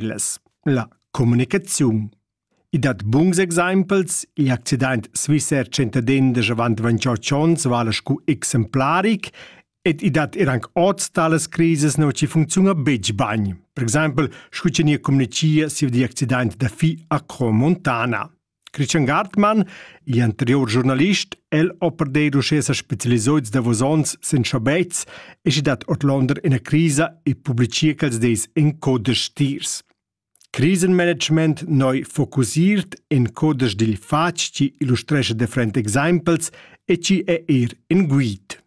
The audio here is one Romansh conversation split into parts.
La communicaziun. I dat buns exempels. Il accident svizzer Tschentaden da avant 28 onns vala scu exemplaric ed i dat er anc oz talas crises nua chi funcziuna betg bain. Per exempel, scu cha nia communichia siu di accident da fi a Cromontana. Christian Gartmann, in anterior giornalist, el ho perder uschè sa specialisoits davos ons sen schabets e schi dat ordlonder ina crisa e publicia quels dis in codesch tiers. Krisenmanagement noi focusiert in codesch dil fatg chi illustrescha different examples e chi è er in guid.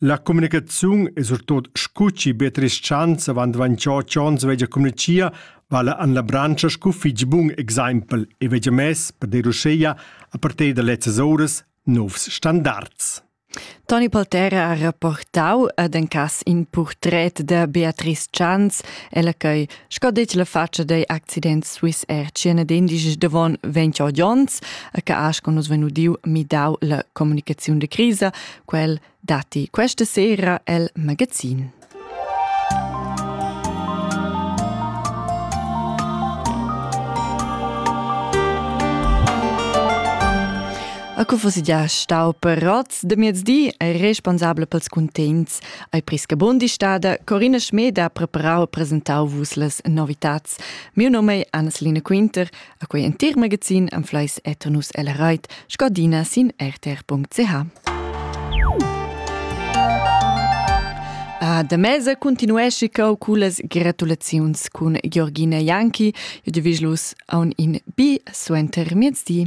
La communicaziun e surtot scu chi be tres chants avant dvanchò ch'ons vegia communichia vala an la branscha scu fich bun exaimpel e vegia mess per dir uschea a partir da lezzas ouras nouvs standards. Toni Poltera ha rapportau ad en cas in purtret da Beatrice Chans, ella che, sco detg la faccia dei accident Swiss Air, cena d'indici davon 20 gions, che ha con nus venudiu midau la comunicaziun de crisa, Quel datti questa sera el magazin. A cu fosse già stau per roz de miezdi è responsabel pels cuntents ai prisca Bundistada Corina Schmed ha preparau e presentau vus les novitats. Mio nome è Anneslina Quinter A quei entir magazin anfleis eternus el reit scadina sin rtr.ch. A da mesa continuesci cau cullas gratulaziuns cun Georgina Janki e divigilus aun in bi suenter miezdi.